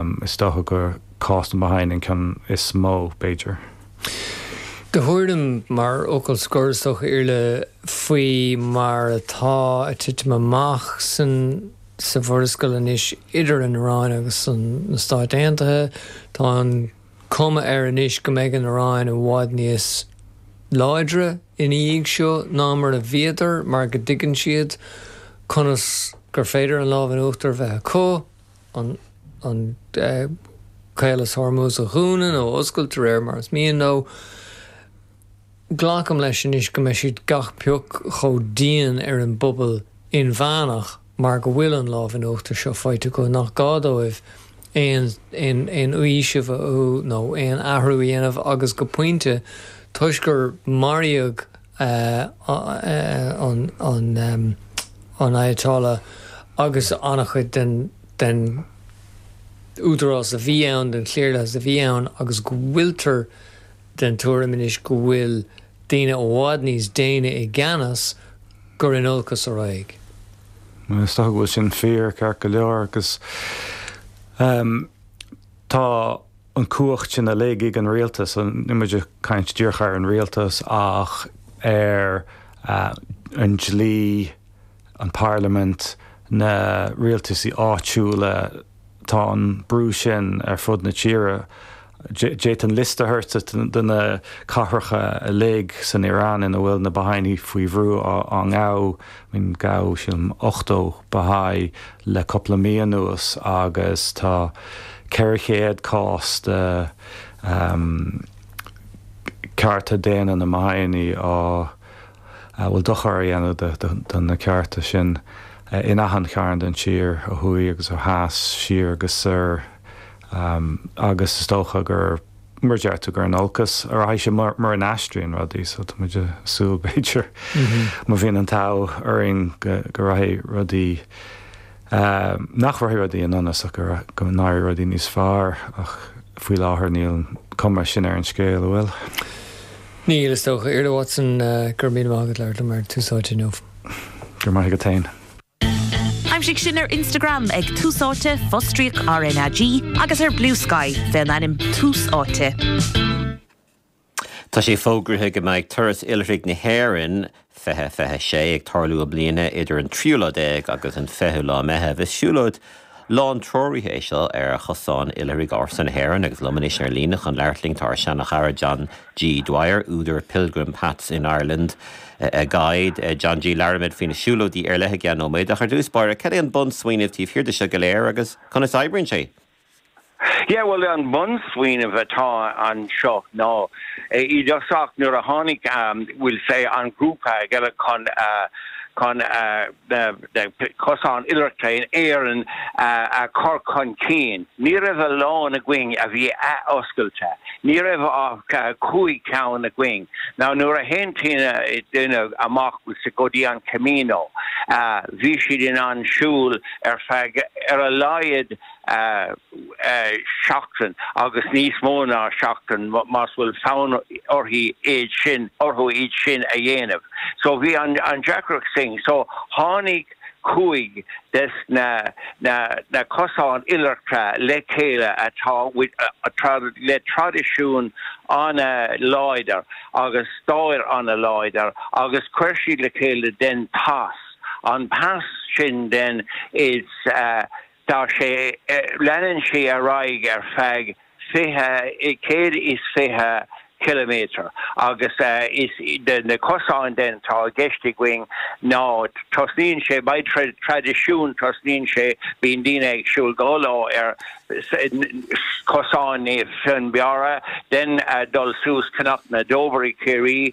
Is dócha gur cás na mBahá'íoch an ceann is mó, b'fhéidir. Do thuairim, mar fhocal scor, is dócha, Iarla, faoi mar atá a' titim amach san, sa Mhurascaill anois, idir an Iráin agus an, na Stáit Aontaithe, tá an chuma air anois go mbeidh an Iráin i bhfad níos láidre ina dhiaidh seo ná mar a bhíodar, mar go dtuigeann siad conas gur féidir an lámh in uachtar a bheith acu. ar Chaolas Hormuz a dhúnadh nó a oscailt de réir mar is mian leo. Glacaim leis anois go mbeidh siad gach pioc chomh dian ar an bpobal inmheánach mar go bhfuil an lámh in uachtar seo faighte acu nach gá dóibh aon fhaoiseamh nó aon athrú a dhéanamh agus go pointe toisc gur maraíodh an Ayatollah agus an-chuid den údarás a bhí ann, den chliarlathas a bhí ann agus go bhfuiltear den tuairim anois go bhfuil daoine i bhfad níos déine i gceannas, gur in olcas a raghadh. Is dócha go bhfuil sin fíor, ceart go leor, agus tá an cumhacht sin uilig ag an rialtas, níl muid ag caint díreach ar an rialtas ach ar an dlí, an parlaimint, na rialtaisí áitiúla, tá an brú sin ar fud na tíre. D'fhéadfainn liosta a thabhairt duit de na cathracha uilig san Iaráin ina bhfuil na Baha'ínigh faoi bhrú á ngabháil, Gabhadh sílim 80 Baha'i le cupla mí anuas agus tá 400 cás de chearta daonna na mBaha'i a bhfuil dochar á dhéanamh do na cearta sin in achan chearn den tír, ó thuaidh agus ó theas, siar agus soir agus is dócha gur. mar a dúirt tú gur in olcas a rachaidh sé mura n-aistríonn rudaí so tá muid ag súil b'fhéidir má bhíonn an t-ádh orainn go rachaidh rudaí nach rachaidh rudaí i ndonas ach go n-éirí rudaí níos fearr ach faoi láthair níl an cuma sin ar an scéal, an bhfuil? Níl, is dócha. Iarla Watson, Go raibh míle maith agat as labhairt liom ar Tús Áite inniu. Go raibh maith agat féin. Aimsigh sinn ar Instagram ag Tús Áite, fostríoc RnaG, agus ar Bluesky, fén ainm Tús Áite. Tá sé fógraithe go mbeidh Turas Oilithrigh na hÉireann 2026 ag tarlú i mbliana idir an tríú lá déag agus an fichiú lá Meitheamh. Is siúlóid Lántreoraithe é seo ar chosáin oilithrigh ársa na hÉireann agus liom anois ar líne chun labhairt linn tá ár seanachara John G. Dwyer, údar Pilgrim Paths in Ireland, a guide. John G. Labhróimid faoi na siúlóidí ar leith i gceann nóiméad ach ar dtús báire, cad é an bunsmaoineamh taobh thiar de seo go léir agus conas oibríonn sé? Yeah well an bunsmaoineamh atá anseo ná i dtosach nuair a tháinig we'll say an grúpa le chéile chun chun cosáin oilithreachta in Éirinn a chur chun cinn ní raibh a lán againn a bhí athoscailte, ní raibh ach cúig cheann againn. Now nuair a théann duine amach we'll say go dtí an Camino bhí siad in ann siúl ar feadh ar a laghad seachtain agus níos mó ná seachtain más bhfuil fonn uirthi iad sin, orthu iad sin a dhéanamh. So bhí an an deacracht sin. So tháinig cúig des na na na cosáin oilithreachta le chéile atá with trad le traidisiún an-láidir agus stair an-láidir agus chuir siad le chéile then pas, an pas sin then is eh, Tá sé, leanann sé ar aghaidh ar feadh fiche, céad is fiche ciliméadar agus is iad na cosáin then atá i gceist againn ná tosnaíonn sé, by traidisiún, tosnaíonn sé, bíonn daoine ag siúl dhá lá ar Chosán Naomh Fionnbarra, then dul suas Cnoc na dTobar i gCiarraí.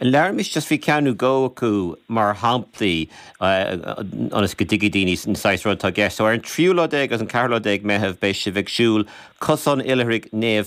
Labhraímis faoi cheann nó dhó acu mar shamplaí ionas go dtuigfidh daoine an saghas ruda atá i gceist. So ar an tríú lá déag agus an ceathrú lá déag Meitheamh beidh sibh ag siúl Cosán Oilithrigh Naomh